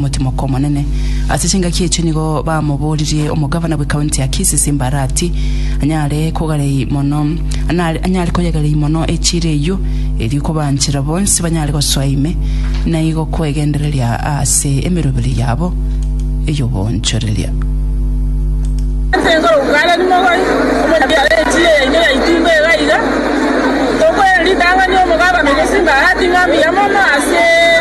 Omotiomoko omonene. Ase chingaki echio nigo bamoboririe omogavana bwe county ya Kisii Simbarati anyare kogarei mono anare anyare koyegarei mono echira eyio erio kobanchera bonsi banyare gosoa ime naigo kwegendereria ase emeroberi yabo eyobonchoreria.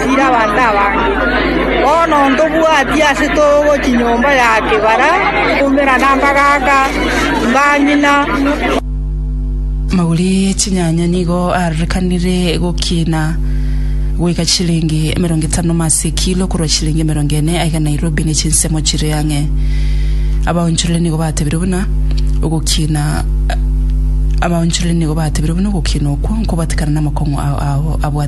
achiire abanto abange. Bono ntobwatie ase togo chinyomba ya kebara nkoumera na mbagaaka, mbang'ina. Amaguri e chinyanya nigo arorekanire gokina goika chilingi emerongo etano mo ase ekilo korwa chilingi emerongo ene aiga Nairobi ne chinsemo chire ang'e. Abaonchorere nigo batebire buna ogokina Abaonchorere nigo batebire buna ogokina okwo nkobwatekana namakong'u ao abwate.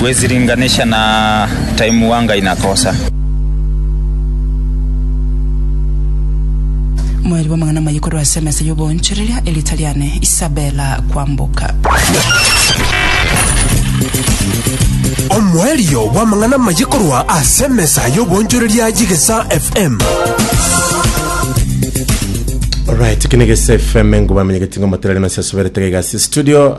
Gwesiringanisha na time wa Ngai na kosa. Moeri bw'amang'ana amaya korwa ase emesa y'oboonchoreria, erieta riane Isabella Kwamboka. Omoerio bw'amang'ana amaya korwa ase emesa y'oboonchoreria y'Egesa FM. Alright, kine gese FM ngo bamenye getingo materali na sasubere tege gasi studio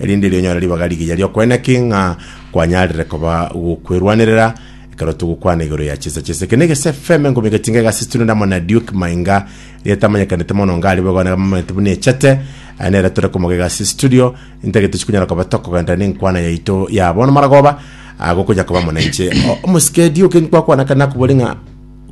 erinde rionyore ribaga rigiya ri'okoena ki ng'a kwanyarire koba gokwerwanerera ekero togokwana igoro ya chinsa chinsa. Eke negese FM engomi egetinga egasistunwe na Mona Duke Mainga rietamanyekaniete mono onga ari boigo nabamanyete buna echete aye nere tore komoga egasi studio intagete chikonyara koba tokogenderera nenkwana yaito ya bono maragoba agokonya koba mona inche omosike Duke nkwakwana kare nakobori ng'a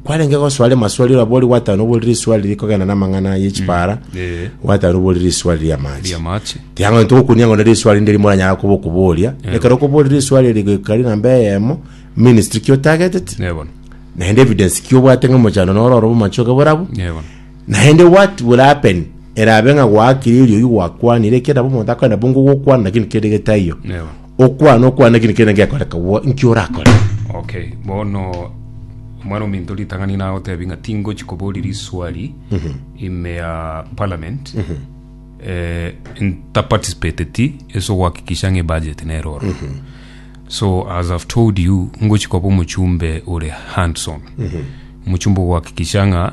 kwarenge gosoa ere maswali ora bori gwatano bori riswali riri kogenda na amang'ana ye chipara Eh, gwatano bori riswali ria amache ria mache. tiang'o ntogokunia ng'one riswali ndiri moranyara kuba okuboria ekero okobori riswali eri goikari namba eyemo ministry ki otagetete Nebono. naende evidence ki obwate ng'a mochando noro orobo machoke borabu Nebono. naende what will happen erabe ng'a gwaakire erio oyio gwakwanire ekerabo omonto akoenda bongo gokwana lakini kere getaiyo Nebono. Okwana okwana ekio nikiana gekorekagwo, inki orakore? Okay, bono Omwana-o-minto ritang'ani nagotebi ng'a tingochi koboria riswali ime ya parliament eh, ntaparticipateti ase ogohakikisha ng'a ebudget nere oro. So as I've told you ngochi koba omochumbe ore hands on, omochumbe ogohakikisha ng'a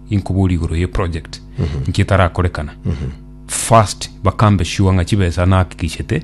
inkoboria igoro ye project nki etarakorekana first bakambe sure ng'a chibesa nahakikishete